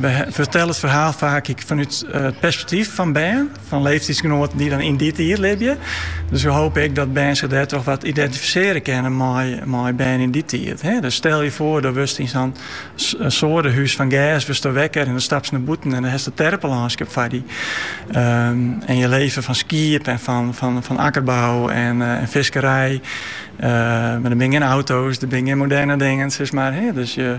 We fertellen it ferhaal faak ek fanút it perspektyf fan bern, fan leeftiedsgenoaten dy't dan yn dy tiid libje. Dus we hopen ek dat bern zich dêrtroch wat identifisearje kinne mei bern yn dy tiid. Dus stel je voor, do wurdst yn sa'n seadehûs fan gers wurdst do wekker en dan stapst nei bûten en dan hast it terpelânskip foar dy. En je leven fan skiep en fan akkerbou en fiskerij. Mar der binne gjin auto's, der binne gjin moderne dingen, sis mar. Dus je.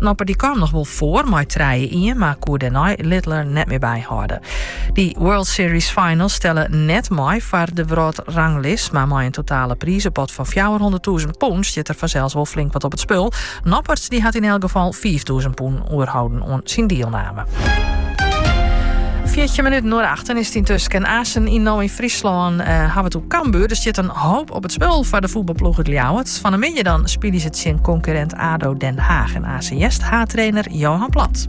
Noppert dy kaam noch wol foar mei trije ien, mar koe dêrnei Littler net mear byhâlde. Dy World Series Finals telle net mei foar de wrâldranglist, mar mei in totale prizepot fan fjouwerhûnderttûzen pûn stiet der fansels wol flink wat op it spul. Noppert dy hat yn elk gefal fiiftûzen pûn oerholden oan syn dielname. Fjirtjin minuten oer achten is it yntusken. Aansen yn No yn Fryslân hawwe we it oer Cambuur. Der stiet in hoop op it spul foar de fuotbalploech út Ljouwert. Fan 'e middei dan spylje se tsjin konkurrint ADO Den Haag en aanst haadtrainer Johan Plat.